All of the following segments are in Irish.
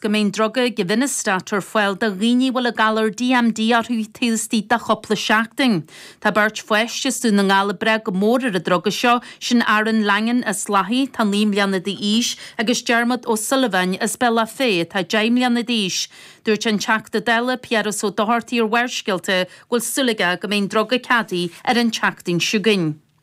go mbeidh an druga Givinostat ar fáil do dhaoine a bhfuil an galar DMD orthu taobh istigh de chúpla seachtain. Tá beirt pháiste as Dún na nGall ag brath go mór ar an druga seo, sin Aaron Langan as Lathaigh, atá 9 mbliana de aois, agus Diarmuid O'Sullivan as Bealach Féich atá 10 mbliana d'aois. Dúirt an Teachta Dála, Piaras Ó Dochartaigh ar Bharrscéalta go bhfuil súil aige go mbeidh an druga ceadaithe ar an tseachtain seo chugainn.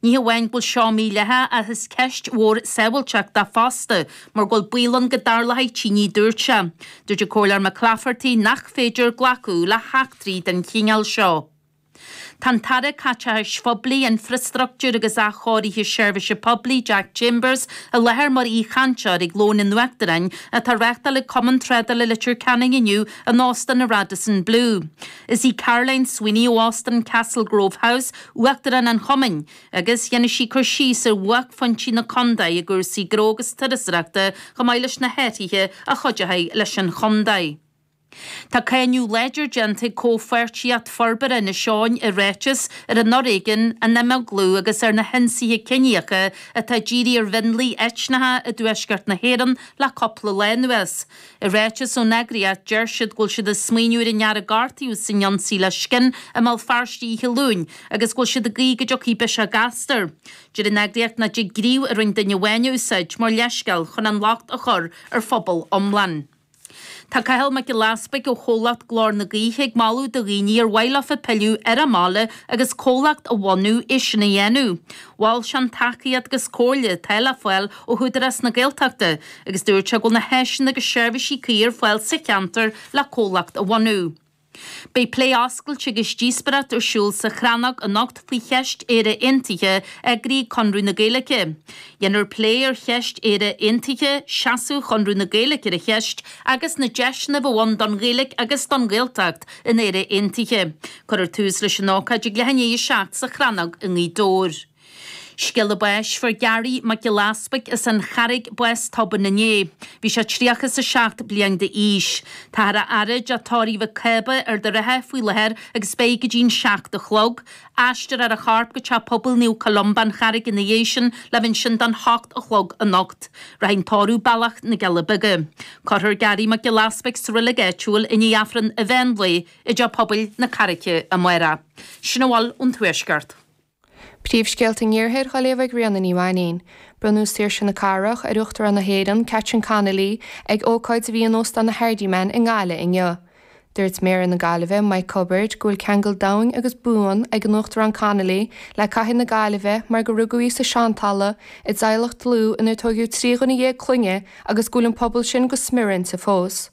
Ní hamháin go bhfuil seo mídhleathach ach is ceist mhór sábháilteachta fosta mar go bhfuil baol ann go dtarlóidh tine dúirt sé. Dúirt an Comhairleoir Mac Laifeartaigh nach féidir glacadh le heachtraí den chineál seo. Tá an tAire Caiteachais Phoiblí, Infreastruchtúir agus Athchóirithe Seirbhíse Poiblí, Jack Chambers, i láthair mar aoichainteoir ag Lón an Uachtaráin atá á reáchtáil ag Cumann Trádála Leitir Ceanainn inniu in Óstán an Radisson Blu. Is í Caroline Sweeney ó Óstán Castle Grove House uachtarán an chumainn agus dhéanfaidh sí cur síos ar bhuaicphointí na contae i gcúrsaí gnó agus turasóireachta chomh maith leis na hathruithe a chuideoidh leis an chontae. Tá cáineadh láidir déanta ag Comhpháirtíocht Forbartha Inis Eoghain i ráiteas ar an fhoréigean, an imeaglú agus ar na hionsaithe ciníocha atá ag díriú ar mhionlaigh eitneacha i dtuaisceart na hÉireann le cúpla lá anuas. I ráiteas ón eagraíocht, deir siad go bhfuil siad ag smaoineamh ar an fhear a gortaíodh san ionsaí le scin i mBéal Feirste oíche Luain agus go bhfuil siad ag guí go dtiocfaidh biseach gasta air. Deir an eagraíocht nach dtig gníomh a rinn duine amháin a úsáid mar leithscéal chun an locht a chur ar phobal iomlán. Tá Cathal Mac Giolla Easpaig ó chomhlacht Glór na Gaoithe ag moladh do dhaoine ar mhaith leofa pilleadh ar an bhaile agus comhlacht a bhunú é sin a dhéanamh. Mhol sé an tacaíocht agus comhairle atá le fáil ó hÚdarás na Gaeltachta agus dúirt sé go bhfuil na háiseanna agus seirbhísí cuí ar fáil sa cheantar le comhlacht a bhunú. Beidh plé oscailte agus díospóireacht ar siúl sa Chrannóg anocht faoi cheist Éire Aontaithe eagraithe ag Conradh na Gaeilge. Dhéanfar plé ar cheist Éire Aontaithe, seasamh Chonradh na Gaeilge ar an cheist agus na deiseanna a bheadh ann don Ghaeilge agus don Ghaeltacht in Éire Aontaithe. Cuirfear tús leis an ócáid ag leath i ndiaidh a seacht sa Chrannóg i nGaoth Dobhair. Scéala báis fuair Garry Mac Giolla Easbuic as an Charraig, bás tobann inné. Bhí sé tríocha is a seacht bliain de aois. Táthar á fhaire i dteach tórraimh McCabe Ard an Rátha faoi láthair agus beidh go dtí'n seacht a chlog. Aistreofar a chorp go teach pobail Naomh Columba an Charraig ina dhiaidh sin le bheith ansin don hocht a chlog anocht. Rachaidh an tórramh bealach na gCealla Beaga. Cuirfear Garry Mac Giolla Easbuic sa roilig áitiúil i ndiaidh Aifreann an mheán lae i dteach pobail na Carraice amáireach. Sin a bhfuil ón Tuaisceart. Príomhscéalta an Iarthair dhá léamh ag Ríona Ní Mhainín. Bronnadh Saoirse na Cathrach ar Uachtarán na hÉireann, Catherine Connolly, ag ócáid a bhí in Óstán an Hardiman i nGaillimh inniu. Dúirt Méara na Gaillimhe, Mike Cubbard, go bhfuil ceangal domhain agus buan ag an Uachtarán Connolly le cathair na Gaillimhe mar gur rugadh í sa tSeantalamh i dteaghlach dlúth inar tóigeadh trí dhuine dhéag clainne agus go bhfuil an pobal sin go smior inti fós.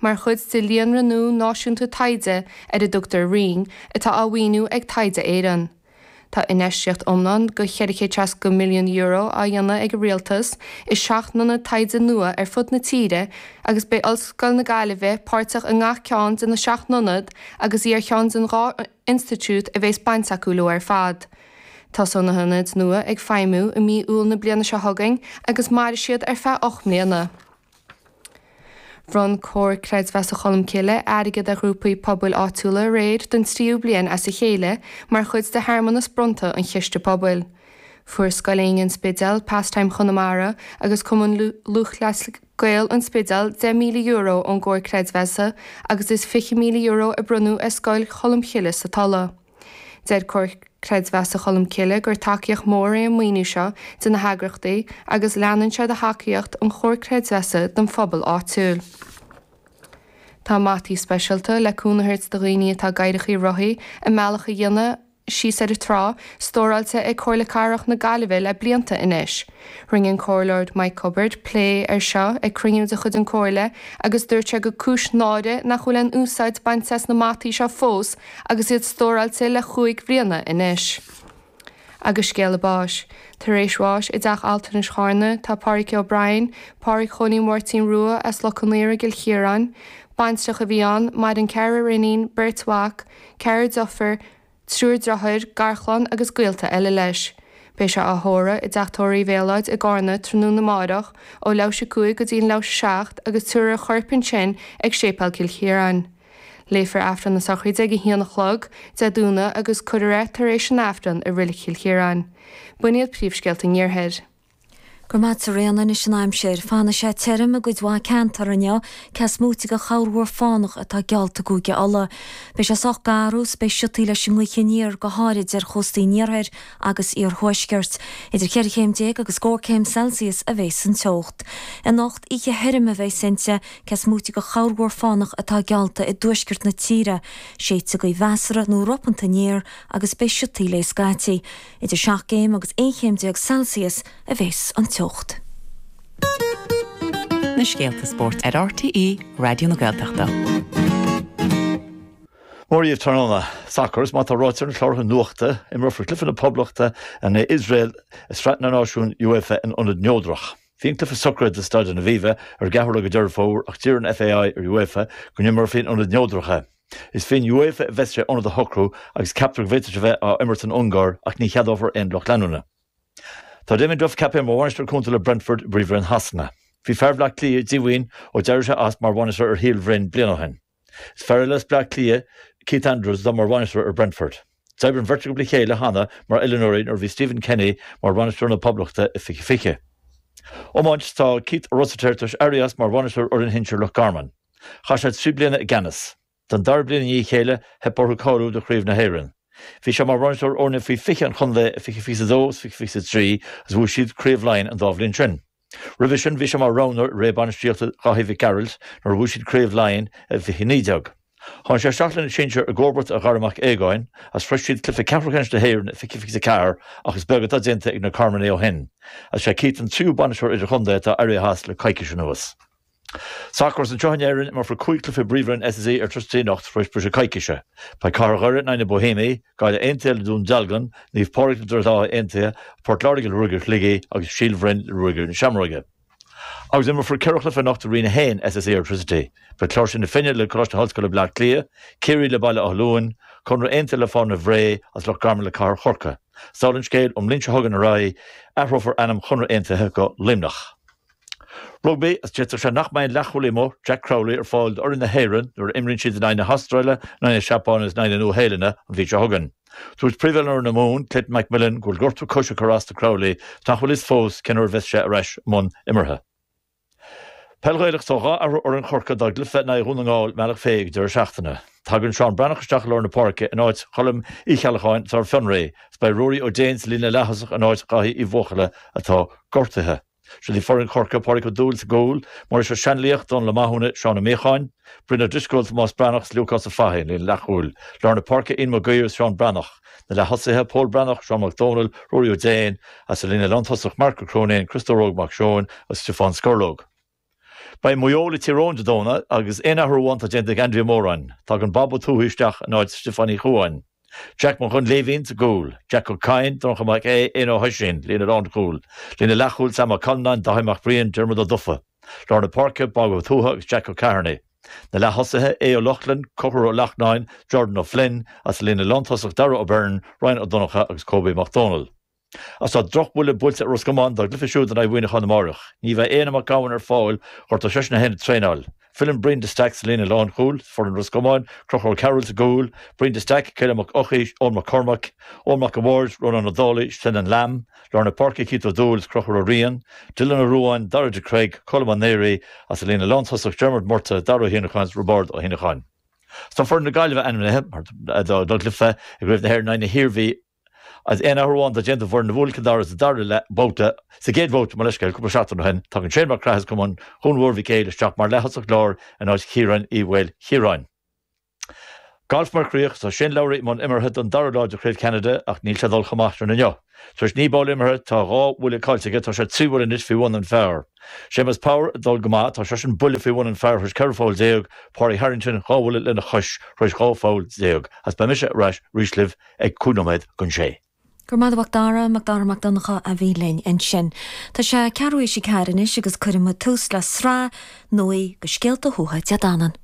Mar chuid de líonra nua náisiúnta taighde ar a dtugtar Rinn, atá á mhaoiniú ag Taighde Éireann, tá infheistíocht iomlán de €460 milliún á dhéanamh ag an Rialtas i seacht n-ionad taighde nua ar fud na tíre agus beidh Ollscoil na Gaillimhe páirteach i ngach ceann de na seacht n-ionad agus í ar cheann den dhá institiúid a bhéas baint acu leo ar fad. Tosóidh na hionaid nua ag feidhmiú i mí Iúil na bliana seo chugainn agus mairfidh siad ar feadh ocht mbliana. Bhronn Comhar Creidmheasa Cholmcille airgead ar ghrúpaí pobail áitiúla aréir don tríú bliain as a chéile mar chuid de shearmanas bronnta an chiste pobail. Fuair Scoil Éinne an Spidéal, Pastime Chonamara agus Cumann Lúthchleas Gael an Spidéal €10,000 ón gComhar Creidmheasa agus is €20,000 a bronnadh ar Scoil Cholmcille sa Tulaigh. Deir Comhar Creidmheasa Cholm Cille gur tacaíocht mhór é an maoiniú seo do na heagraíochtaí agus leanann sé de thacaíocht an Chomhar Creidmheasa don phobal áitiúil. Tá mataí speisialta le cúnamh a thabhairt do dhaoine atá i gcathaoireachaí rothaí a mbealach a dhéanamh síos ar an trá, stóráilte ag Comhairle Cathrach na Gaillimhe le blianta anois. Rinne an Comhairleoir Mike Cubbard plé air seo ag cruinniú de chuid an Comhairle agus dúirt sé gur cúis náire nach bhfuil aon úsáid bainte as na mataí seo fós agus iad stóráilte le chúig bhliana anois. Agus scéala báis, tar éis bháis i dTeach Altranais Charna, tá Páraic O'Brien, Páraic Chóilín Mháirtín Rua as Loch Conaortha i gCill Chiaráin. Baintreach a bhí ann, maireann ceathrar iníon, beirt mhac, ceathrar deirfiúr, triúr driotháir, garchlann agus gaolta eile leis. Beidh sé á thórradh i dteach tórraimh Mhéalóid i gCarna tráthnóna amáireach, ó leathuair tar éis a cúig go dtí an leathuair tar éis a seacht, agus tabharfar a chorp ansin ag Séipéal Cill Chiaráin. Léifear Aifreann na Sochraide ag a haon a chlog, Dé Domhnaigh, agus cuirfear é tar éis an Aifrinn i Reilig Chill Chiaráin. B'in iad príomhscéalta an Iarthair. Go raibh maith agat a Ríona. Anois an aimsir. Fanfaidh sé tirim i gcuid mhaith ceantar inniu, cé is móite de chorrmhúr fánach atá geallta i gCúige Uladh. Beidh sé sách garbh 's beidh siotaí leis an ngaoth aniar, go háirid ar chóstaí an iarthair agus iarthuaiscirt. Idir cheithre chéim déag agus scór céim Celsius a bheas an teocht. Anocht, oíche thirim a bheas inti, cé is móite de chorrmhúr fánach atá geallta i dtuaisceart na tíre. Séidfidh gaoth mheasartha nó ropánta aniar agus beidh siotaí léi scaití. Idir seacht gcéim agus aon chéim déag Celsius a bheas an teocht. na scéalta spóirt ar RTÉ Raidió na Gaeltachta. Mora dhaoibh tráthnóna, Sacar, is mar atá ráite ar na cláracha nuachta, imreofar cluiche na Poblachta in aghaidh Iosrael i Sraith na Náisiún UEFA in ionad neodrach. Bhí an cluiche socraithe do Staid an Aviva ar an gceathrú de Dheireadh Fómhair ach d'iarr an FAI ar UEFA go n-imreofaí in ionad neodrach é. Is faoi UEFA a bheas sé ionad a shocrú agus ceaptar go bhféadfadh sé bheith á imirt san Ungáir ach ní cheadófar aon lucht leanúna. Tá Damien Duff ceaptha mar bhainisteoir cúnta le Brentford, i bPríomhroinn Shasana. Bhí fear Bhleá Cliath díomhaoin ó d'éirigh sé as mar bhainisteoir ar Shíol Bhroin bliain ó shin. Is fear eile as Bleá Cliath, Keith Andrews, atá mar bhainisteoir ar Brentford. D'oibir an bheirt acu le chéile cheana mar oiliúnóirí nuair a bhí Stephen Kenny mar bhainisteoir na Poblachta i 2020. Iomáint Tá Keith Rossiter tar éis éirí as mar bhainisteoir fhoireann shinsir Loch Garman. Chaith sé trí bliana i gceannas. Don dara bliain i ndiaidh a chéile, theip orthu cáiliú do Chraobh na hÉireann. Bhí sé mar bhainisteoir fhoirne faoi 20 an chontae i 2022 is 2023 agus bhuaigh siad Craobh Laighean an dá bhliain sin. Roimhe sin, bhí sé mar roghnóir i ré bainistíochta Dháithí Mhic Gearailt nuair a bhuaigh siad Craobh Laighean i 2019. Tháinig sé isteach leis na sinsir i gcomharbacht ar Dhaire Mac Aogáin agus shroich siad cluiche ceathrúcheannais na hÉireann i 2024 ach is beag atá déanta ag na Carmanaigh ó shin. Is é Keith an tríú bainisteoir idirchontae atá éirithe as le coicís anuas. Sacar is anseo in Éirinn, imreofar cúig chluife i bPríomhroinn SSE Airtricity anocht tar éis briseadh coicíse. Beidh Cathair Dhoire in aghaidh na Boihéamaigh, Gaillimh Aontaithe le Dún Dealgan, Naomh Pádraig le Droichead Átha Aontaithe, Port Láirge le Ruagairí Shligigh agus Síol Bhroin le Ruagairí na Seamróige. Agus imreofar ceithre chluife anocht i Roinn 1 SSE Airtricity. Beidh Cláirsigh na Finne le Coláiste na hOllscoile Bleá Cliath, Ciarraí le Baile Átha Luain, Conradh Aontaithe le Fánaithe Bhré agus Loch Garman le Cathair Chorcaí. 'S dála an scéil ón mbliain seo chugainn ar aghaidh, athrófar ainm Chonradh Aontaithe go Luimneach. Rugbaí, D'fhéadfadh sé nach mbeidh an leathchúlaí amuigh, Jack Crowley, ar fáil d'fhoireann na hÉireann nuair a imríonn siad in aghaidh na hAstráile, in aghaidh na Seapáine agus in aghaidh na Nua-Shéalainne an mhí seo chugainn. Dúirt príomhoiliúnóir fhoireann na Mumhan, Clayton McMillan, go bhfuil gortú coise ag cur as do Crowley ach nach bhfuil a fhios fós cén uair a bheas sé ar ais i mbun imeartha. Peil Ghaelach, Tá dhá athrú ar fhoireann Chorcaí dá gcluiche in aghaidh Dhún na nGall i mBealach Féich ag an deireadh seachtaine. Tagann Seán Breathnach isteach i lár na páirce in áit Choilm Uí Cheallacháin atá ar fionraí agus beidh Ruairí Ó Déin sa líne leaththosach in áit Dháithí Uí Bhuachalla atá gortaithe. Seod í foireann Chorcaí, Pádraig Ó Dúill sa gcúl, Muiris Ó Seanlaoich, Dónal Ó Mathúna, Seán Ó Míocháin, Brian Ó Drisceoil, Tomás Breathnach 's Lúcás Ó Fathaigh, an líne leathchúil, lár na páirce, Ian Mac Uidhir 's Seán Breathnach, na leath-thosaithe, Pól Breathnach, Seán Mac Dónaill, Ruairí Ó Déin, is an líne lántosach, Marc Ó Cróinín, Criostóir Óg Mac Seóin agus Stiofán Scorlóg. Beidh Maigh Eo le Tír Eoghain Dé Domhnaigh agus aon athrú amháin atá déanta ag Andy Moran. Tagann Bob Ó Tuathaigh isteach in áit Stiofáin Uí Chuain. Jack Mac Dhoinnléibhín sa gcúl, Jack Ó Cadhain, Donnchadh Mac Aodh, Éanna Ó hOisín, líne lánchúil, Líne leathchúil Sam Ó Callanáin, Dáithí Mac Briain, Diarmuid Ó Dufaigh. Lár na páirce, Bob Ó Tuathaigh agus Jack Ó Ceithearnaigh. Na leath-thosaithe, Aodh Ó Lochlainn, Conchúr Ó Lachtnáin, Jordan Ó Floinn, is sa líne lántosach Darragh Ó Beirn, Ryan Ó Donnchadha agus Kobe Mac Dónaill. Is tá drochbhuille buailte ar Ros Comáin dá gcluiche siúd in aghaidh Mhuineacháin amárach. Ní bheidh Éanna Mac Gabhann ar fáil gortaíodh seisean féin ag traenáil. Filleann Brian de Staic sa líne lánchúil is foireann Ros Comáin, Conchúr Ó Cearúill sa gcúl, Brian de Staic, Caelim Mac Eochaidh, Eoin Mac Cormaic, Eoin Mac a' Bhaird, Rónán Ó Dálaigh, Senan Lambe, lár na páirce Keith Ó Dúill is Conchúr Ó Riain, Dylan Ó Ruáin, Dara de Creag, Colm Ó Náraigh, agus sa líne lántosach Diarmuid Murtagh, Dara Ó hÉanacháin is Roibeard Ó hÉanacháin. Tá foireann na Gaillimhe ainmnithe dá gcluife i gCraobh na hÉireann in aghaidh na hIarmhí. Is aon athrú amháin atá déanta ón bhfoireann a bhuail Cill Dara sa dara leath babhta sa gcéad bhabhta, mo leithscéal, cúpla seachtain ó shin. Tagann Shane Mac Craith as cumann Dhún Mhór Mhic Éil isteach mar leaththosach láir in áit Chiaráin Uí Mhaoilchiaráin. Galf mar chríoch tá Shane Lowry i mbun imeartha don dara lá de Chraobh Cheanada ach níl sé ag dul chomh maith sin inniu. Tar éis naoi bpoll imeartha tá dhá bhuille caillte aige, tá sé trí bhuille anois faoi bhun an phar. Séamus Power ag dul go maith, tá seisean buille faoi bhun an phar tar éis ceithre pholl déag, Pádraig Harrington dhá bhuille lena chois tar éis dhá pholl déag. Is beidh mise ar ais arís libh. ag cúig nóiméad chun sé. Go raibh maith agat, a Mhac Dara, Mac Dara Mac Donnchadha a bhí linn ansin. Tá sé ceathrú tar éis a ceathair anois agus cuirfidh muid tús le sraith nuaí de scéalta Thuatha Dé Danann.